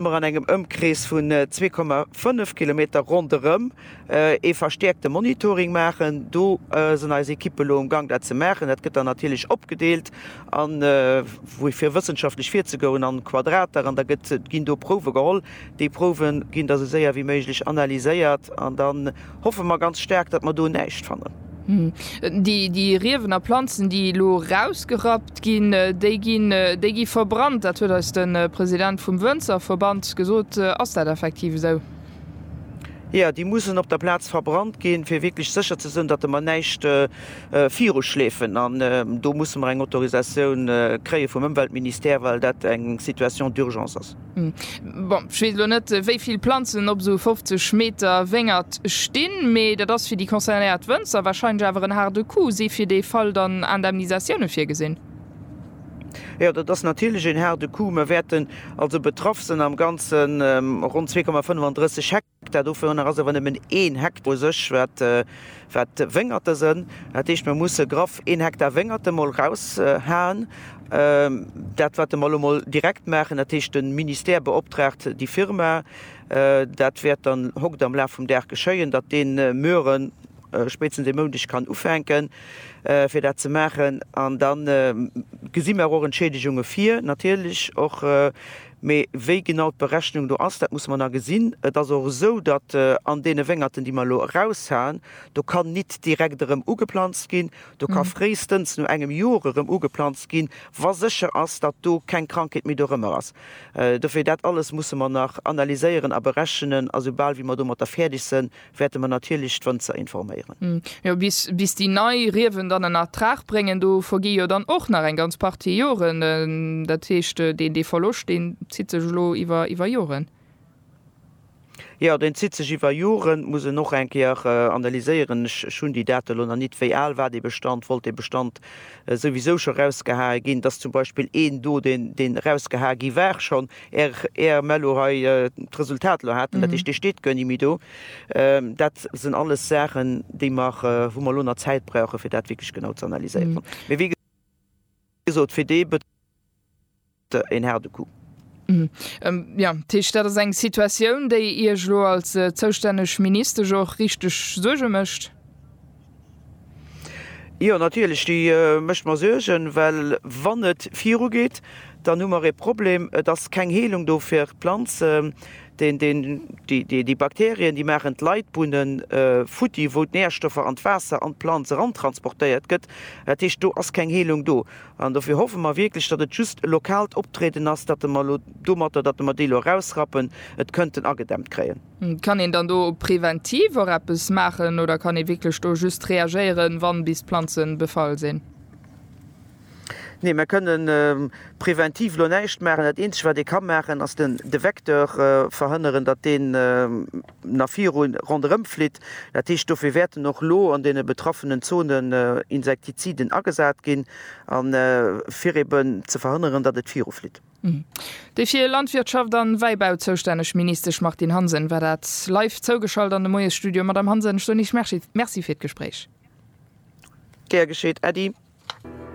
mer an engem Ëmkrees vun 2,5 Kilometer ronderëm ee verstäerkte Monitoring maachen. Do sinn eis Ekippe lo um Gang dat ze maachen. Dat gëtt dann natierlech opgedeelt an wou fir wëssenschaftlech virzegouen an Quadrater an da gëtt ginn do Prouwe geholl. Déi Prouwe ginn da sou séier wéi méiglech analyséiert an dann, hoffe mer ganz staark, datt mer do näischt fannen. Déi Riewen a Planzen, déi elo erausgerappt ginn, déi gi verbrannt. Dat huet eis de President vum Wënzerverband gesot. Ass dat effektiv esou? Jo, déi mussen op der Plaz verbrannt ginn, fir wierklech sécher ze sinn, datt mer näischt viruschleefen. An do musse mer eng Autorisatioun kréie vum Ëmweltministère, well dat eng Situation d'urgence ass. Bon, ech weess elo net, wéi vill Planzen op esou 50 Meter Wéngert stinn, mee dat ass fir déi concernéiert Wënzer warscheinlech awer en haarde Coup. Si fir dee Fall dann Indemnisatioune virgesinn? Jo, dat ass natierlech een haarde Coup. Mer wäerten also betraff sinn am Ganze ronn 2,35 Hektar. Hektar, dovunner ass awer nëmmen een Hektar u sech, wat Wéngerte sënn. Dat heescht, mir musse graff een Hektar Wéngerte mol eraushaen. Dat wat mer elo mol direkt maachen, dat heescht de Ministère beoptraagt déi Firma, dat wäert dann hokt am Laf vum Dag geschéien, datt dee muere spéitstens e Moundeg kann ufänke fir dat ze maachen. An da gesi mer och Entschiedegunge vir, natierlech och. Mee wéi genau d'Berechnung do ass, dat musse mer nach gesinn. Et ass och esou, datt an deene Wéngerten, déi mer elo eraushaen, do kann nit direkt erëm ugeplanzt ginn. Do ka fréistens no engem Jor erëm ugeplanzt ginn, wa sécher ass, datt do keng Krankheet méi dorëmmer ass. Dofir, dat alles musse mer nach analyséieren a berechnen a soubal wéi mer domatter fäerdeg sënn, wäerte mer natierlech d'Wënzer informéieren. Jo, bis déi nei Riewen dann en Ertrag bréngen, do vergi jo dann och nach eng ganz Partie Joren. Dat heescht, dee Verloscht, deen zitt sech elo iwwer Joren. Jo, deen zitt sech iwwer Joren. Muss en och eng Kéier analyséieren. Ech hunn déi Date elo nach nit. Wéi al war dee Bestand? Wollt dee Bestand souwisou scho rausgehae ginn? Dass zum Beispill een do, deen erausgehae gi war, schonn Är Ärmel lo hei d'Resultat lo haten, dat heescht dee steet guer ni méi do, dat sen alles Saachen déi mer, wou mer lo nach Zäit brauchen fir dat wierklech genau ze analyséieren. Mee wéi gesot fir dee Betrib ass et een haarde Coup. Jo, dat heescht dat ass eng Situatioun déi Iech lo als zoustänneg Ministesch och richteg Suerge mécht? Jo, natierlech, déi mécht mer Suergen, well wann et virugeet, dann hu mer e Problem. Et ass keng Heelung do fir d'Planzen, déi Bakterien, déi maachen d'Leitbunne futti, wou d'Närstoffer an d'Waasser an d'Planz erantransportéiert gëtt. Dat heescht, do ass keng Heelung do. An dofir hoffe mer wierklech, datt et just e lokaalt Optrieden ass, datt mer elo domatter, datt mer déi elo erausrappen, et kënnten agedämmt kréien. Kann een dann do preventiv och eppes maachen oder kann ee wierklech do just reagéieren, wann bis d'Planzen befall sinn? Nee, mer kënnen preventiv elo näischt maachen. Dat eenzegt wat ee ka maachen ass den de Vecteur verhënneren, datt deen na viru ronderëm flitt. Dat heescht dofir wäerten och elo an deene betraffenen Zonen Insektiziden agesat ginn an fir eben ze verhënneren, datt et viru flitt. Déi fir Landwirtschaft an Wäibau zoustänneg Ministesch Martine Hansen war dat. Live zougeschalt an de Moiesstudio. Madame Hansen, ech soen Iech Merci fir d'Gespréich. Gär geschéet, Äddi.